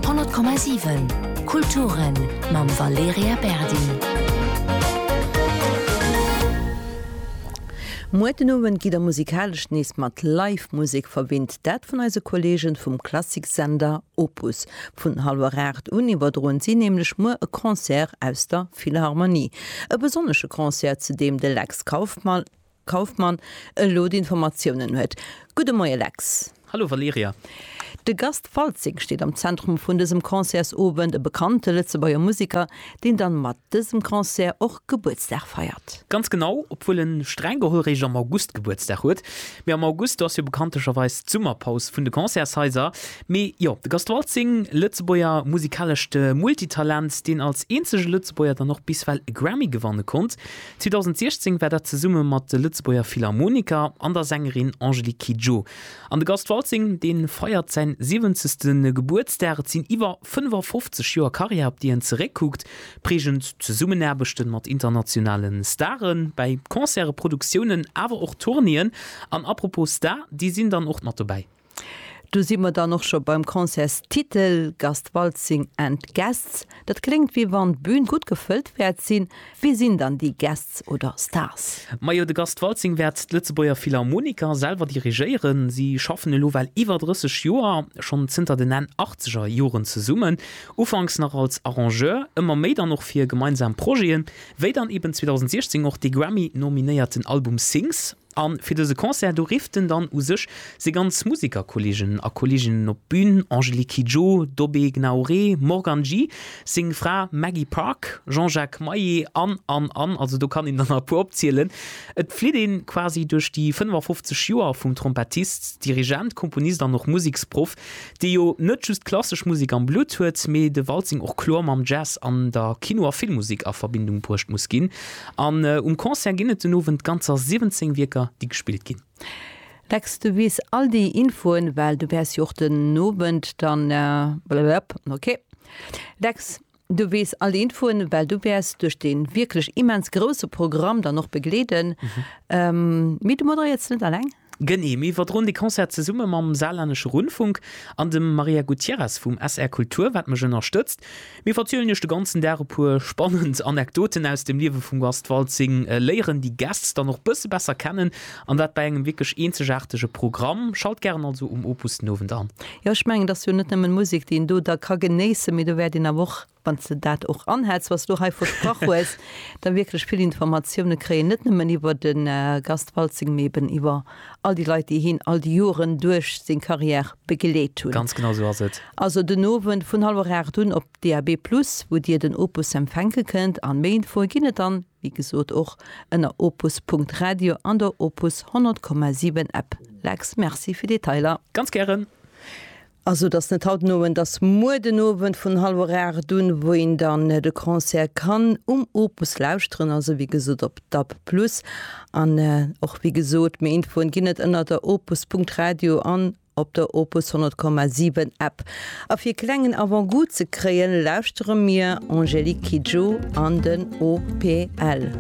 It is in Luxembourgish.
100,7 Kulturen mam Valerija Berdi. Muer den Owend gitt der musikalesch nees mat Live Musek verwinnt, dat vun eise Kolleegen vum Klassiksender Opus. Vun hallwer 8 un iwwerdroen si nämlech muer e Concert aus der Philharmonie. E besonnesche Concert, zu deem de Lex Kauffmann Kauffmann elo d'Informatiounen huet. Gudde Moie Lex. Hallo Valerija. De Gast Waltzing steet am Zentrum vun dësem Concertsowend, e bekannte Lëtzebuerger Musiker, deen dann mat dësem Concert och Gebuertsdag feiert. Ganz genau, obwuel en streng geholl réischt am August Gebuertsdag huet. Mee am August, do ass jo bekanntecherweis d'Summerpaus vun de Concertshaiser. Mee jo, de Gast Waltzing, Lëtzebuerger musikalescht Multitalent, deen als eenzege Lëtzebuerger dann och bis well e Grammy gewanne konnt, 2016 war dat zesumme mat de Lëtzebuerger Philharmoniker an der Sängerin Angélique Kidjo. An de Gast Waltzing, dee feiert säin 70. Gebuertsdag. Et sinn iwwer 55 Joer Karriär, op déi en zeréckkuckt. Prägend Zesummenaarbechte mat internationale Stare bäi Concerte, Produktiounen, awer och Tournéeën. An apropos Star, déi sinn dann och mat dobäi. Do si mer dann och scho beim Concertstitel, Gast Waltzing and Guests. Dat kléngt wéi wann d'Bün gutt gefëllt wäert sinn. Wie sinn dann déi Guests oder Stars? Majo, de Gast Waltzing wäert d'Lëtzebuerger Philharmoniker selwer dirigéieren. Si schaffen elo well iwwer 30 Joer, schonn zënter den Enn achtzeger Joren zesummen. Ufanks nach als Arrangeur, ëmmer méi dann och fir gemeinsam Projeten, wéi dann eben 2016 och dee Grammy-nominéierten Album Sings. A fir dëse Concert do rifft en dann u sech seng ganz Musikerkolleegen a Kolleeginnen op d'Bün, Angélique Kidjo, Dobé Gnaouré, Morgan J, seng Fra Maggie Park, Jean-Jacques Maé an, an, an, also do kann een der nach e puer opzielen. Et flitt een quasi duerch déi 55 Joer vum Trompettist, Dirigent, Komponist an och Musiksproff, dee jo net just klassesch Musek am Blutt huet, mee de Waltzing och kloer mam Jazz an der Kino a Filmmusek a Verbindung bruecht muss ginn. An um Concert ginn et den Owend ganzer 17 Wierker, déi gespillt ginn. Lex, du weess all déi Infoen, well du wäers jo och den Owend dann blablabla, ok Lex, Du weess all Infoen, well du wäers duerch dee wierklech immens grousse Programm dann och begleeden. Mee du moderéiers net alleng. Genee, mir iwwerdroen de Concert zesumme mam Saarlännesche Rundfunk an dem Maria Gutierrez vum SR Kultur, wat mech ënnerstëtzt. Mir verzielen iech de ganzen Dag e puer spannend Anekdoten aus dem Liewe vum Gast Waltzing, léieren déi Gäst dann och bësse besser kennen An dat bei engem wierklech eenzegaartege Programm. Schalt gären also um Opus den Owend an. Jo, ech mengen, et ass jo net nëmmen Musek, déi een do da ka genéissen, mee do wäert een awer och, wann s de dat och anhäls, wat s de elo hei versprach hues, da wierklech vill Informatioune kréien, net nëmmen iwwer de Gast Waltzing, mee eben iwwer all déi Leit, déi hien all déi Joren duerch seng Carrière begleet hunn. Ganz genau esou ass et. Also den Owend vun hallwer 8 un op DAB+ wou Dir den Opus empfänke kënnt. An méi Infoe ginn et dann Wéi gesot och ënner opus Punkt Radio an der Opus 100,7 App. Lex, Merci fir Detailer. Ganz gären. Also et ass net haut den Owend, et ass muer den Owend vun hallwer 8 un, wou een dann de Concert kann um Opus lauschteren, also wéi gesot op DAB+ an och wéi gesot méi Infoen ginn et ënner der opus Punkt Radio an op der Opus 100,7 App. A fir e klengen Avant-goût ze kréien, lauschtere mir Angélique Kidjo an den OPL.